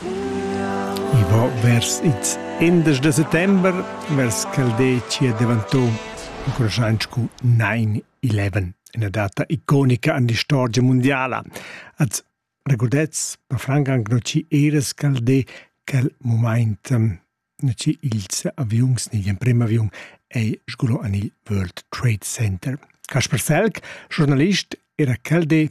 I va vers ils indesch da settember, vers ch'el dettia daventà incurschant sco 9-11, ina data iconica en l'istorgia mundiala. Als regordets per franc anc non ci era scaldé quel moment ehm, non ci ils aviuns ni l'emprim aviun ei sgulò en il World Trade Center. Kasper Felk, giornalist, era quel de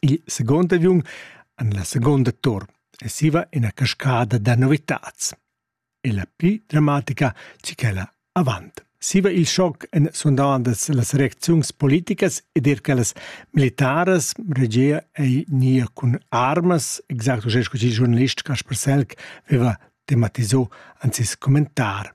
Il second aviun en la seconda tur e siva ina cascada da novitads. E la pli dramatica che quella avant. Siva il schoc en sundavandas las reacziuns politicas ed er quellas militaras regia ei nia cun armas, exacto sco il giornalist Kaspar Selk veva tematiso anzis commentar.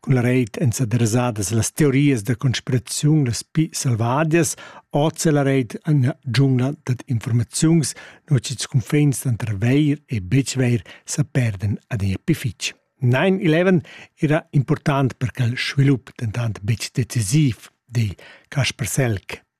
Cul reit èn s'adressadas las teorias da conspiraziun las pli selvadias, hoz è la reit ina dschungla dad informaziuns, nua ch'ils cunfins tranter vair e betg vair sa perdan adina pli fitg. 9-11 era important per quel svilup, dentant betg decisiv, di Kasper Selk.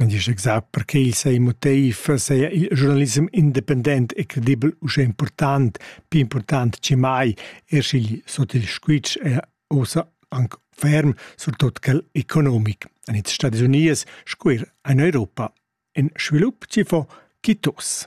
Ün disch exact perche il seis motiv seia il giurnalissem independent e credibel uschè important, pii important chi mai, eir sch'igl sot il squitsch è uossa anc ferm, surtot quel economic. A its Stadis Uniers sco eir in Europa. Ün svilup chi fo quitos.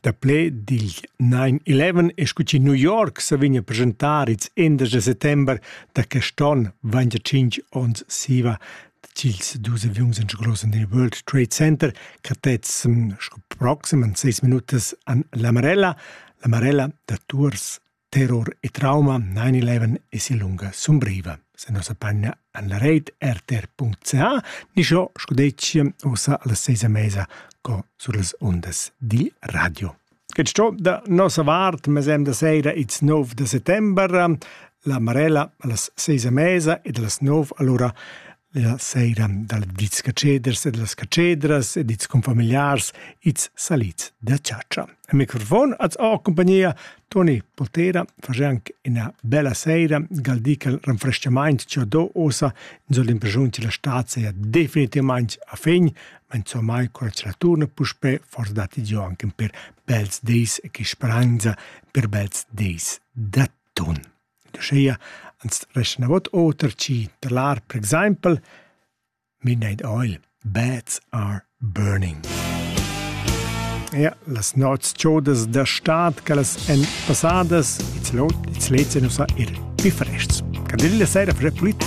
Dapple digl 9-11 è scu chi New York sa vigna presentar ils 11 de settember da quest'on, vanja 5 ons siva, dils dus aviuns enschlossen dil World Trade Center, cattezzem sco proxim an 6 minutas an l'Amarella, l'Amarella da Tours. Terror e trauma nain il leven es in lunga sumbriva. Se nossa panna an la reit rtr.ca ni scho scudetschia ussa alla seisa mesa co sur las ondas di radio. Get sto da nossa vart, mesem da seira its 9 de settember, la Marella allas seisa mesa ed allas 9 allora La seira dal dits catscheders e da las catschedras ed its confamigliars its salids da chatscha. A microfon az ho compagnia Toni Potera, fagianc ina bella seira, galdical renfrestamaint che do osa in soll impresiun che la stat seia definitivament a fin, ma insomma col la turna puspe fordati dio anche per bels deis e che speranza per bels deis da ton. Uschia ans reschnavot oter chi da l'art per exaimpel Midnight Oil, Bats are burning. Ja, las nots chodas da stad che las èn passadas, ils lets e nus ir pifrests. Candeli la sera fare pulita.